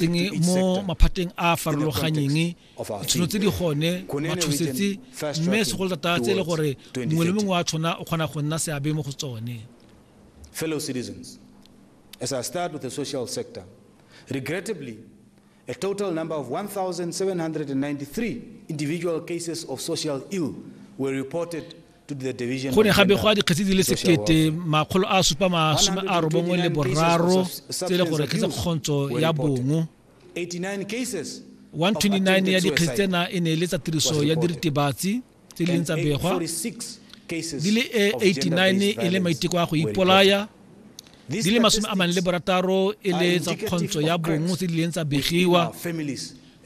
teng mo maphateng a a farologanyeng ditšhono tse di gone mathusetse mme segolotata tse e le gore mongwe le mongwe wa tshona o kgona go nna seabe mo go tsone fellow citizens as i start with the social sector regrettably a total number of 1793 individual cases of social ill were reported go ne ga begwa dikgetsi di le sekete makgolo a supa masome a robongwe le boraro tse e le gore kgetse kgontso ya bongo 129 ya dikgetsi tsena e ne e le tsa tiriso ya diritibatsi tse di leng tsa begwa di le 89 e le maiteko a go ipolaya di le masome a mane le borataro e le tsa kgontso ya bongo tse di leng tsa begiwa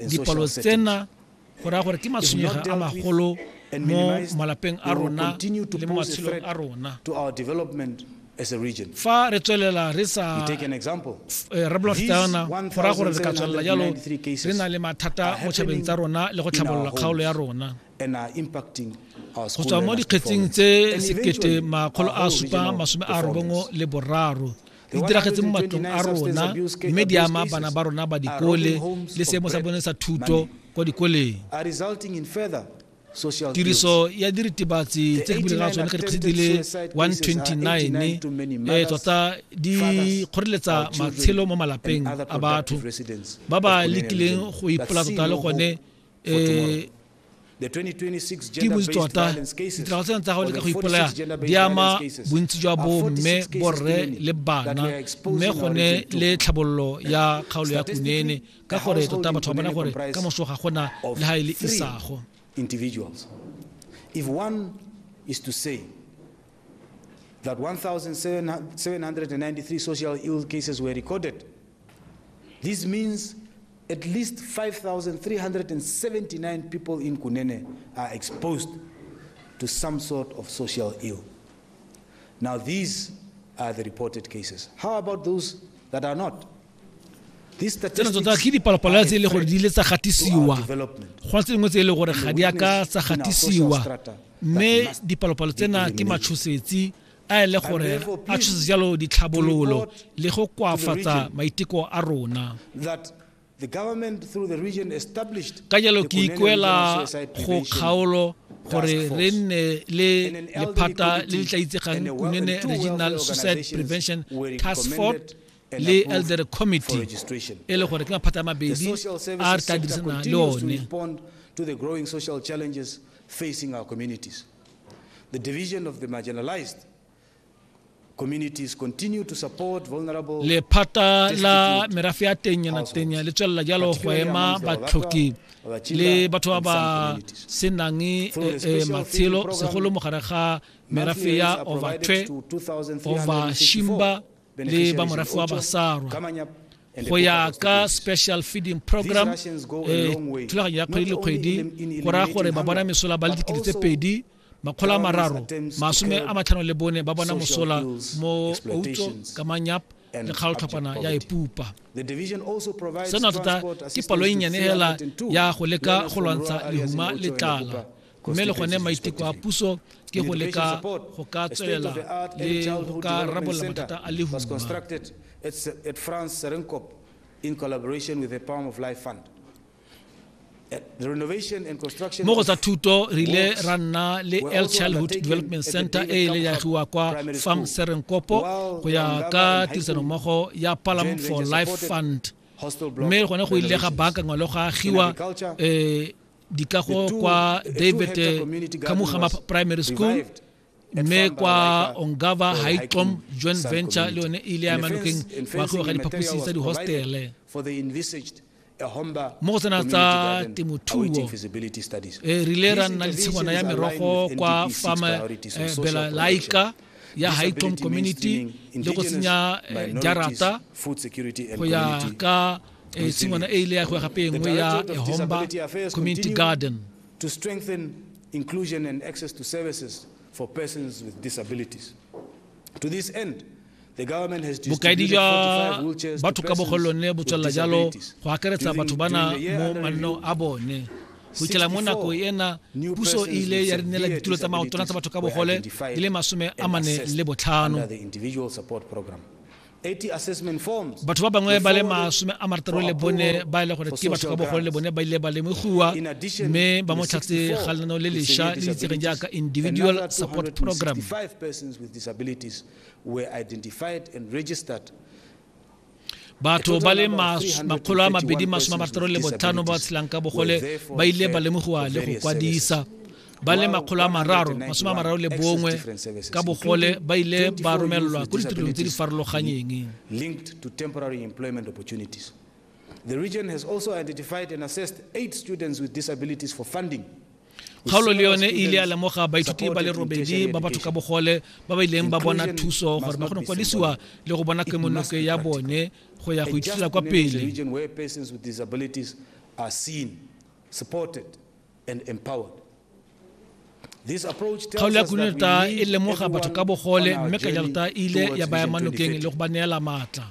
dipalo tsena go raya gore ke matshwenyega a magolo mo malapeng a rona le mo matshelong a rona fa re tswelela re sa eh, rebola fetana go raya gore re ka tswelela jalo re na le mathata mo tšhabeng tsa rona le go tlhabolola kgaolo ya rona go tswa mo dikgetsing tse sekete makgolo a supa masome a robongwe le boraro di diragetse mo matlong a rona mme di ama bana ba rona ba dikole le seemo sa bone sa thuto kwa dikoleng tiriso ya diritibatsi tse ke bulega tsone ka dikgetse di le 129 e tota di kgoreletsa matshelo mo malapeng a batho ba ba lekileng go ipola tota le gone um ke botse tota ditirago tsena tsa gabone ka go ipolaya di ama bontsi jwa bo mme borre le bana mme gone le tlhabololo ya kgaolo ya kunene ka gore tota batho ba bona gore ka moso ga gona le ga e le isago If one is to say that 1,793 social ill cases were recorded This means at least 5,379 people in Kunene are exposed to some sort of social ill. Now, these are the reported cases. How about those that are not? These tsena statistics tota ke dipalopalo tse e le gore di ile tsa are gatisiwa development. go na tse dingwe tse e le gore ga di a ka tsa gatisiwa mme dipalopalo tsena ke matshosetsi a ele gore a tshose jalo ditlhabololo le go koafatsa maiteko a rona ka jalo ke ikuela go kgaolo gore re nne le lephata le le tla itsegang kunene regional suicide prevention task force le elder committee e le gore ke maphata a mabedi a re tla dirisana le one The division of the marginalized communities continue to support vulnerable lephata la merafe ya tenyanatenya le tswelela jalo go ema batlhoki le batho ba ba senang eh, eh, matshelo segolo mogare ga merafe ya overtwe overshimba le ba morafe wa basarwa go ya ka special feeding program eh, thulaganyo ya kgwedi le kgwedi go raya gore ba bona mesola ba le dikete tse pedi makgolo a mararo masome a matlhano le bone ba bona mosola mo outso ka manyap le kgaoltlhopana ya epupa seno tota ke palo e nnyane fela ya go leka go lwantsha lehuma le tlala mme le gone maiteko a puso ke go leka go ka tswelela le go ka rarabolola mathata a lehuma in collaboration with the Palm of Life Fund. Eh, mo go tsa thuto re ile ra nna le el childhood development center e ile ya tliwa kwa farm serenkopo go ya ka tirisanommogo ya palam for life fund mme gone go ile ga baakangwa le go agiwa um dikago kwa david kamuga primary school mme kwa ongava haitlom joint venture le yone e ile ya manokeng wa go ga diphaposi tsa dihostele mo go tsena tsa temothuo eh, re ile ra nna le tshingwana ya merogo kwa farm eh, bela laika ya haitlom community le go tsenya eh, jarata go ya ka e tshingwana e ile ya gwa gape e nngwe ya ehomba community garden to strengthen inclusion and access to services for persons with disabilities to this end bokaedi jwa batho ka bogolone bo tswelela jalo go akaretsa batho bana mo mannong a bone go ikela mo nako ena puso e ile ya rinela ditulo tsa maotwana tsa batho ka bogole di le masome a mane le botlhano batho ba bangwe ba le masome a marataro le bone ba e le gore ke batho ka bogolo le bone ba ile ba lemogiwa mme ba mo tlhatse ga lenaneo le lesha le itsegeng jaaka individual support program batho ba le makgolo a mabedi masome a marataro le botlhano ba tshelang ka bogole ba ile ba lemogiwa le go kwadisa ba le makgolo a mararo masome a mararo le bongwe ka bogole ba ile ba romelelwa ko ditirong tse di farologanyeng The region has also identified and assessed eight students with disabilities for funding kgaolo le yone e ile ya lemoga baithuti ba le robedi ba batho ka bogole ba ba ileng ba bona thuso gore ba kgone kwadisiwa le go bona kemonoke ya bone go ya go ithutela kwa pele and empowered. kgaolo ya kununerta e lemoga batho ka bogole mme kajarta e ile ya baya manokeng le go ba neela maatla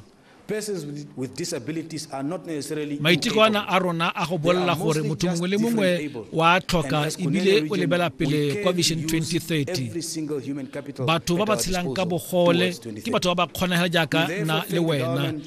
maiteko ana a rona a go bolela gore motho mongwe le mongwe wa tlhoka ebile o lebela pele kwa vision 2030 batho ba ba tshelang ka bogole ke batho ba ba kgonagela jaaka na le wena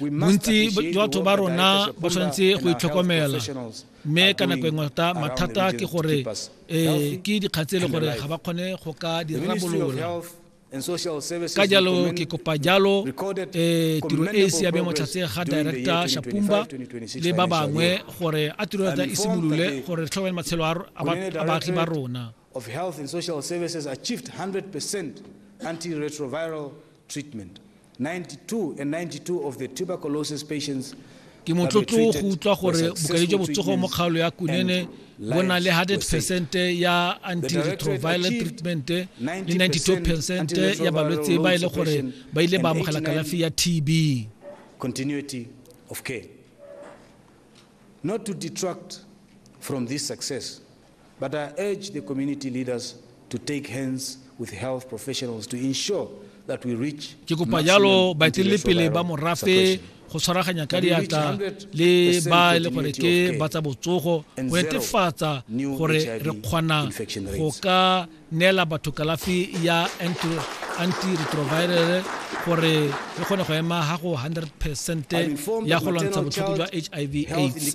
bontsi jwa batho ba rona ba tshwanetse go itlhokomela mme ka nako engwe ta mathata ke gore um ke dikgang tse e le gore ga ba kgone go ka dirabolola ka jalo ke kopa jalo um tiro e e siame motlhatse ga director shapumba le ba bangwe gore a tiro ya e simolole gore re tlhokomele matshelo a baagi ba rona of health and social services achieved 100% antiretroviral treatment. 92 and 92 of the tuberculosis patients Ke motlotlo go utlwa gore bokadi jwa botsogo mo kgaolo ya Kunene bo na le 100 percent ya antiretroviral treatment le 92 percent ya balwetse ba e le gore ba ile ba amogela kalafi ya TB. Continuity of care. Not to detract from this success. But I urge the community leaders to take hands with health professionals to ensure that we reach ke kopa jalo baeteledipele ba morafe go tshwaraganya ka diatla le ba e le gore ke ba tsa botsogo go netefatsa gore re kgona go ka neela batho kalafi ya antiretroviral gore re kgone go ema ga go 100 percent ya go lwantsha botlhoko jwa hiv aids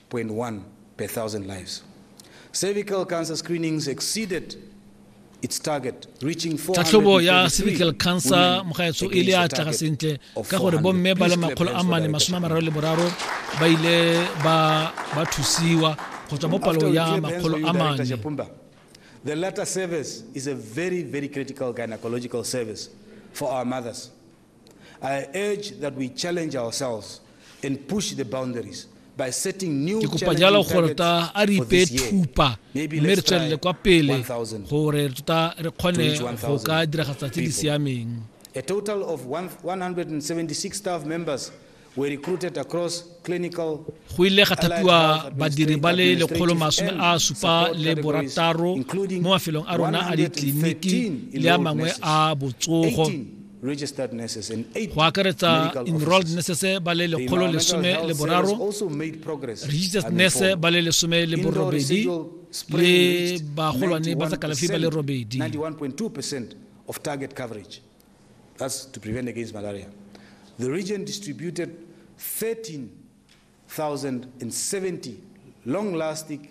0.1 per 1,000 lives. Cervical cancer screenings exceeded its target, reaching tlhatlhobo ya cervical cancer mo gaetsho e le a tlaga sentle ka gore bomme ba le makgolo a mane masome a mararo le boraro ba ile ba thusiwa go tswa mo palong ya makgolo a mane The latter service is a very, very critical gynecological service for our mothers. ke kopa jalo gore ta a re ipe thupa mme re tswelele kwa pele gore tota re kgone go ka diragatsa tse di siameng a total of 176 staff members Go ile ga thapiwa badiri ba le lekgolo masome a supa le borataro mo mafelong a rona a ditleliniki le a mangwe a botsogo go akaretsa enrolled nurses ba le lekgolo lesome le boraro registered nurse ba le lesome le borobedi le bagolwane ba tsa kalafi ba le robedi That's to prevent against malaria. The region distributed 13,070 long-lasting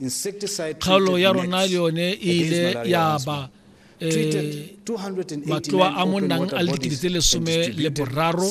insecticide kgaolo ya rona le yone e ile ya ba eh, matloa a monnang a le dikete tse lesome le boraro